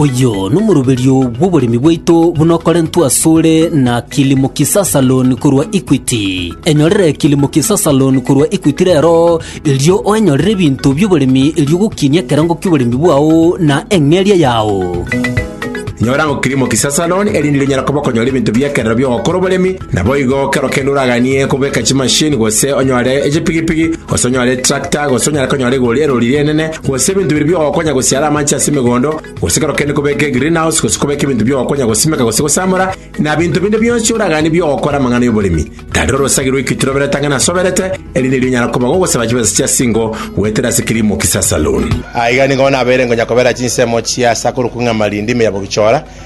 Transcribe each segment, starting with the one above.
Oyio nomoroberio bw'oboremi bwaito buna okorentwe asore na Kilimo Kisasa Loan korwa Equity. Enyorere Kilimo Kisasa Loan korwa Equity rero, erio oenyorere ebinto bi'oboremi erio ogokinia ekerengo ki'oboremi bwao na eng'eria yao. Nyora ng'o Kilimo Kisasa Loan erinde rinyare kobokonyora ebinto bi'ekerero bi'ogokora oboremi, Naboigo kero kende oraganie kobeka chimasini, gose onyore echipigipigi, gose onyore etrakta, gose onyare konyora egori erori ri'enene, gose ebinto biria biogokonya gosiara amanche ase emegondo, gose kero kende kobeka egreenhouse, gose kobeka ebinto biogokonya gosimeka gose gosamora, na binto binde bionsi oraganie bi'ogokora amang'ana y'oboremi, tarire orosagi rw'ekituro oberete ang'e nasoberete, erinde erio onyare koba gogosaba chibesa chia singo goetera ase kilimo kisasaloon. Aiga nigo nabeire ngonya kobera chinsemo chia Sakuru Kung'ama rindime ya Bogichora,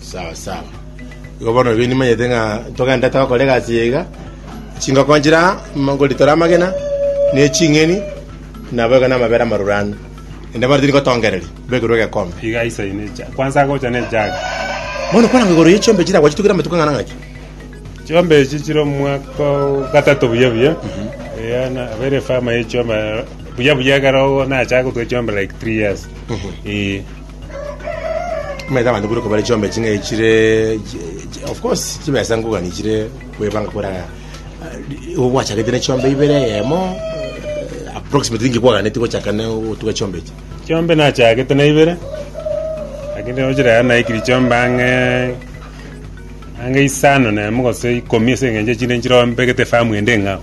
Sawa sawa. Igo bono ebi nimanyete ng'a ntogende togokora egasi eye iga, chingoko nchire aa, m- ngoritore amagena, ne ching'eni, nabo iga namabere amarure ande. Naende bono tiri ngotongereria, mbekerwe egekombe. Iga aisaine ne ejagi. Kwansa agocha ne ejagi. Bono kwarangwa igoro ye chiombe chire agwo chitugire amatuko ang'ana ng'aki? Chiombe echi chire omwaka o gatato buya buya. Eya na abere efama ye chiombe buya buya ekero nacha gotwa chiombe like three years. Ee. Omanyete abanto buna kobare chiombe ching'ai chire chi- of course chibesa nkogani chire kwebanga kore aya igo gwachagete ne chiombe ibere eyemo eh, approximately inki kwaganeti gochaka ne gotuga chiombe echi Chiombe nachagete na ibere, lakini rero ochire aya naikiri chiombe ang'e ang'e isano na emo gose ikomi ase eng'encho echinde nchirombegete efamu ende eng'ao.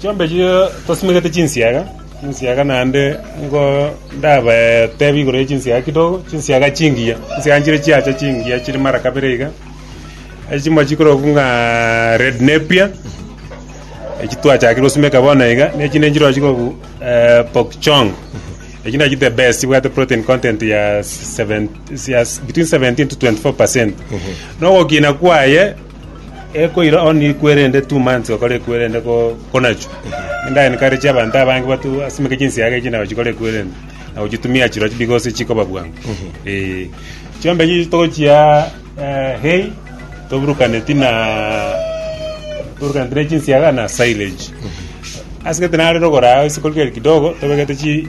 Chiombechi tosimegete chinsiaga, chinsiaga naende nigo ndabatebi igoro ye chinsiaga kidogo, chinsiaga chingiya, chinsiaga nchire chiacha chingiya chire mara kabere iga. Ase chimwe chikorokwa ng'a red napier, echio twachakire gosimeka bono iga, na echinde nchirokwo chikorokwa pork chong, echio nachio the best chibwate protein content ya seven- ya between seventeen to twenty four percent. Na ogokina kwaye. Ekoira on ikwerende two months okore ekwerende ko konachwa enda encourage abanto abange batu asimeke chinsiaga echi nabo chikore ekwerende na gochitumia chirochio because chikoba bwango eh chiombe chichi togochia eh, hay toburukane tina toburukane tina chinsiaga na silage asegete nare rogoro agho isiko riria kidogo tobegete chi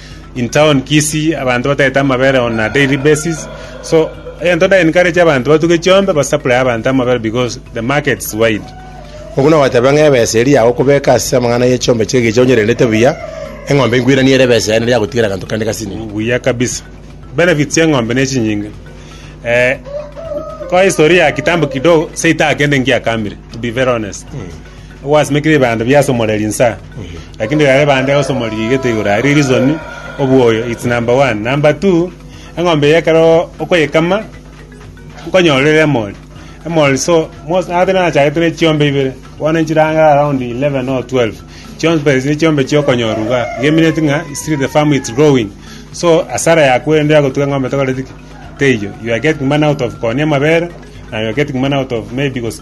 in town Kisii abanto batagete amabere on a daily basis so egento nda encourage abanto batuge chiombe ba supply abanto amabere because the market is wide. Oku nogoteba ng'a ebesa eria yago okobeka ase amang'ana ye chiombe chie egecho onyerendete buya, eng'ombe enkwiranie ere ebesa yaye nari yagotigera eganto kende gasini. Buya kabisa. Benefits ya eng'ombe ne chinyinge. Eh, kwa history ya kitambo kidogo, seita kende ngiakamire, to be very honest. Gwasimekire ebando bia ase omoreri nsa. Lakini riria ribande egosomoa rigigete igoro aria risoni obwoyo its number one number two eng'ombe eye ekero okoyekama nkonyora ere emori emori so mos ate nachagete ne chiombe ibere bono nchire ang'e around eleven or twelve chiombe echio ne chiombe chia okonyorwa igaa igo emineti ng'a still the farm its growing so asara ya kwerende nero egotuga eng'ombe tokoreti ki teiyo you are getting money out of kooni amabere na you are getting money out of maybe gose.